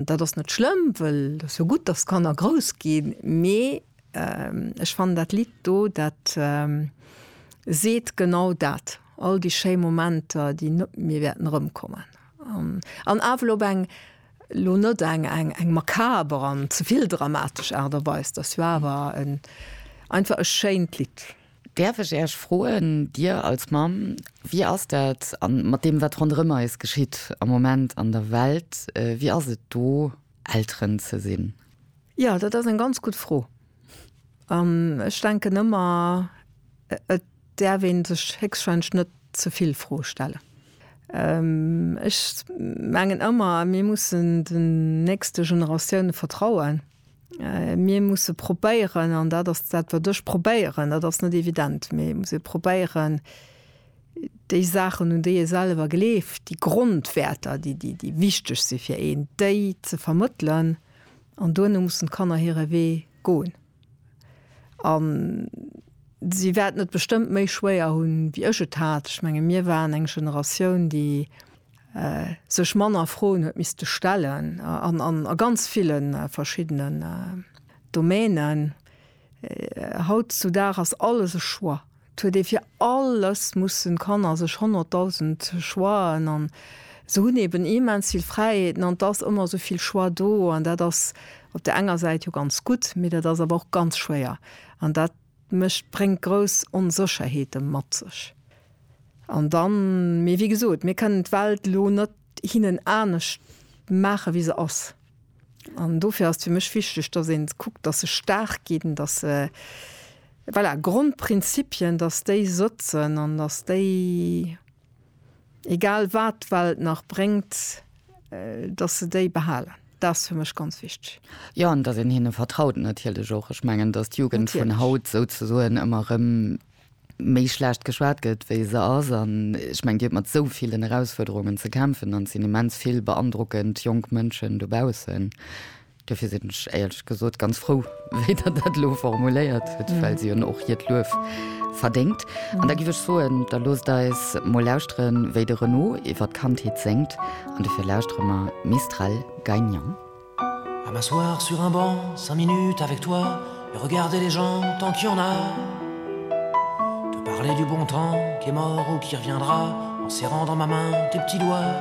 Dat ass net schlëmm, wëll et ass jo gutt, datt d'Kanner grouss ginn. Mee ech fannen dat Lidd do, dat seet genau dat, all déi schéi Momenter, déi net méi wäerten erëmkommen. An awel op eng, lo net eng, eng makaber an ze vill dramatesch Aart a Weis. Et ass jo awer en, einfach e schéint Lidd. Däerf ech Äech froen, Dir als Mamm, wéi ass dat mat deem, wat ronderëm eis geschitt am Moment an der Welt? Wéi ass et do, Elteren ze sinn? Jo, dat ass eng ganz gutt Fro. An ech denken ëmmer, et däerf ee sech héchstwahrscheinlech net ze vill Froe stellen. Ech mengen ëmmer, mir mussen den nächste Generatiounen vertrauen. Mir musse probéieren, an dat ass dat, wat ech probéieren, dat ass net evident, mee ech muss e probéieren, déi Saachen, un déi ee selwer gleeft, déi Grondwäerter, déi, déi, déi wichteg si fir een, déi ze vermëttelen. An duerno mussen d'Kanner hire Wee goen. A si wäerten et bestëmmt méi schwéier hunn, wéi ech et hat. Ech menge mir waren eng Generatioun, déi sech manner Froen huet misste stellen an a ganz ville verschiddenen Domänen. Haut zu Dag ass alles e Choix. Et huet ee fir alles mussen Kanner sech honnertdausend Choixen an se hunn eben immens vill Fräiheeten an et ass ëmmer esou vill Choix do an dat ass op där enger Säit jo ganz gutt, mee dat ass awer och ganz schwéier an dat, Mécht bréngt grouss Onsécherheete mat sech. An dann, mee wéi gesot, mir kënnen d'Welt elo net hinnen anescht maache wéi se ass. An dofir ass et fir mech wichteg, datt ee kuckt, datt se staark ginn, datt se, voilà, Grondprinzipien, datt déi sëtzen an datt déi. Egal wat d'Welt nach bréngt, dass se déi behalen, dat ass fir mech ganz wichteg. Jo, an dass een hinne vertraut natierlech och. Ech mengen, dass d'Jugend vun haut souzesoen ëmmer erëm méi schlecht geschwat gëtt, wéi se ass. An ech mengen, Dir hutt mat esou villen Erausfuerderungen ze kämpfen an et sinn immens vill beandrockend jonk Mënschen dobaussen. Dofir sinn ech éierlech gesot ganz frou, wéi Der dat elo formuléiert hutt, well si hunn och hiert Luef verdéngt. An da giff ech soen, da loosst eis mol lauschteren, wéi de Renaud iwwer d'Kandheet séngt. An dofir lauschtere mer Mistral gagnant. À m'asseoir sur un banc cinq minutes avec toi et regarder les gens tant qu'il y en a Te parler du bon temps qui est mort ou qui reviendra en serrant dans ma main tes petits doigts.